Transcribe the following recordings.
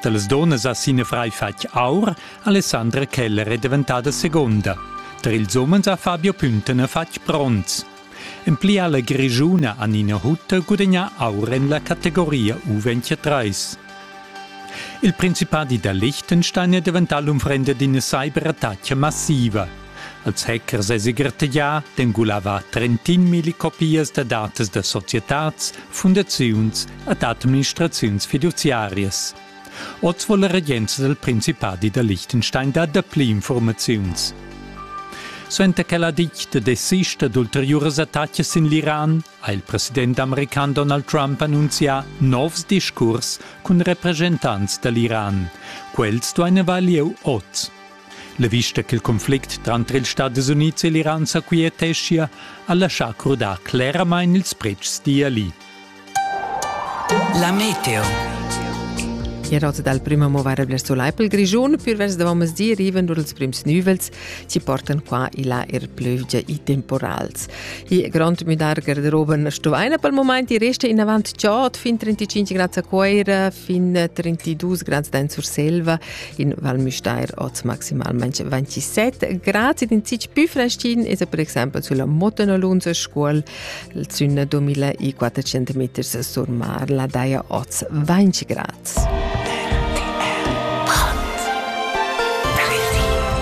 Dallas donnas ha sin frai fatg aur, Alessandra Keller è diventada seconda. Tar ils umens ha Fabio Püntene fatg bronz. En pli ha la Grischuna Anina Hutter gudagnà aur en la categoria U23. Il principadi da Liechtenstein è daventà l'unfrenda d'ina cyberattacca massiva. Els hackers sesi gartegià d'engulava trentin milli copias da datas da societads, fundaziuns ed administraziuns fiduziarias. Oz vuol la regenza del Principadi da Liechtenstein dar dapli informaziuns. Suenter che la ditta desista d'ulteriuras attacas sin l'Iran, ha il president american Donald Trump annunzià novs discurs cun representants dall'Iran. Quels duein avair lieu oz. La vista ch'il conflict tranter ils Stadis Unids e l'Iran s'aquieteschia ha laschà crudar cleramain ils pretschs d'Iali. La meteo. Erots dal prima movare verso l'Aipel Grischun pür vers da di riven dur els prims nüvels chi portan qua e là er plövgia e temporals. I grond müdar garderoben stuvaina pel moment e resta in avant chod fin 35 grads a Cuoira, fin 32 grads d'en Surselva in Val Müstair oz maximalmente 27 grad in zich più freschin es per exempel sulla Motenolunzer Scuol zünna 2400 meters sur mar la daia oz 20 grad.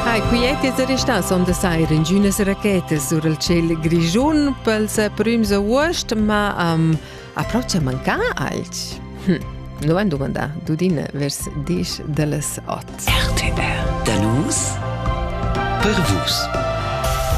Hai quieti es restas on da sair in giunas rachetas sur il ciel grischun pels prüms august, ma am um, Approcha manca alch? Hm, lo han dumandà Dudina vers diesch da las ot. RTR. Da nus per vus.